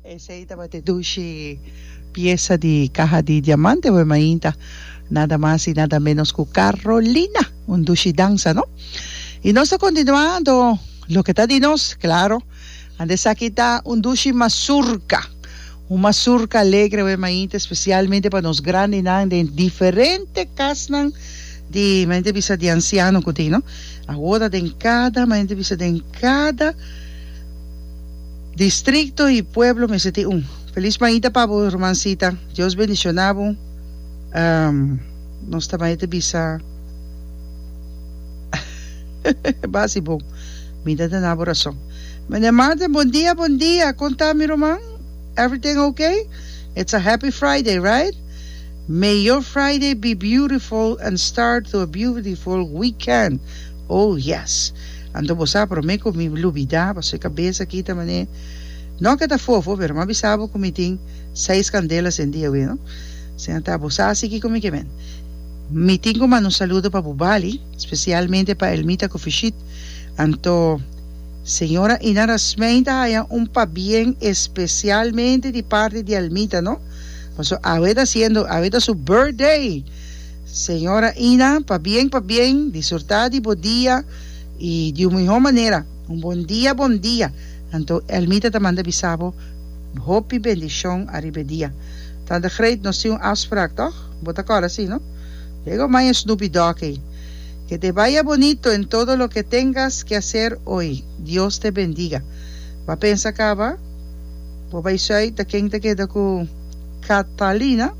Esei tabata e dushi piesa di kaha di diamante bo e mainta, nada mas i nada ménos ku Carolina, un dushi dansa, no? I nos ta kontinuá anto loke ta di nos, klaro, ante esaki ta un dushi masurka, un masurka alegre bo e mainta, spesialmente pa nos grandinan den diferente kasnan di mañana bisa di ansiano ku tin, no? Awor ta den kada mañana bisa den kada. Distrikto i pueblo mester tin un. Feliz maita pa bo hermancita Dios bendiciona bo nos ta maita bisa basi bon mi ta dana bo rason Meneer Martin bon dia bon dia con ta mi ruman everything ok it's a happy Friday right may your Friday be beautiful and start to a beautiful weekend Oh, yes! Anto bo sa promé ku mi lubidá pasobra e kabesa aki ta man'é, no ke ta fofo, pero mi a bisa bo ku mi tin seis kandelas den di awe, no? Siña ta, bo sa sigi ku mi ke men. Mi tin ku manda un saludo pa bo bali, spesialmente pa Elmita ku Fishit. Anto, señora Ina Rasmein ta haña un pabien espesialmente di parti di Elmita, no? Pasobra awe ta siendo, awe ta su birthday! Señora Ina, pabien pabien, disurta di bo dia y di un miho manera. Un bon dia bon dia. Anto Elmita ta manda bisa bo hopi bendicion ariba e dia. Tante Greet nos tin un afspraak toch? Bo ta acorda si no? Luego maña Snoopy Dog ey. Que te vaya bonito en todo lo que tengas que hacer hoy. Dios te bendiga. Ba pensa caba bo bay suey ta ken ta keda cu Catalina.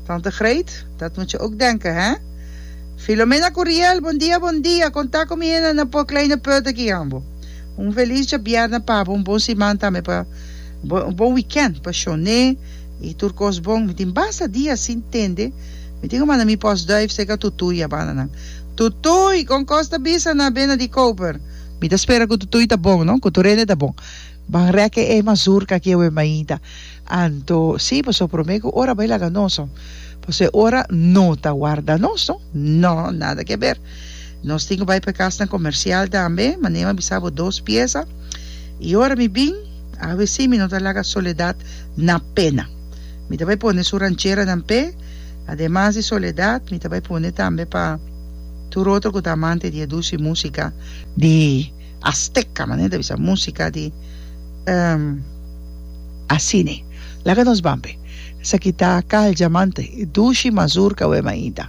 Tante Greet, Dat moet je ook denken, hè? Filomena cu Riel, Bon dia, bon dia! Con ta cu mi hende na por Kleine Put aki ambo? Un feliz dja bierna pa bo, un bon siman tambe pa, un bon weekend pa Shone y tur cos bon. Mi tin basta dia sin tende, mi tin cu manda mi postduif seca Tutuy a banda nan. Tutuy, con cos ta bisa na bena di Koper? Mi ta spera cu Tutuy ta bon, no? Cu tur hende ta bon. Ban rek e e mazurca aki awe mainta. Anto sí, pasobra promé ku ora bai laga nos, pasobra e ora no ta warda nos no, no, nada ke ber. Nos tin ku bai pa e kasnan komersial tambe, ma Neema bisa bo dos piesa, i ora mi bin, avesí mi no ta laga soledat na pena. Mi ta bai pone su rancheranan p'e, ademas di soledat, mi ta bai pone tambe pa tur otro ku ta amante di e dusi músika di. Azteca manera ta bisa musica di asine laga nos ban pe esaki ta cal diamante dushi mazurca wema ainda.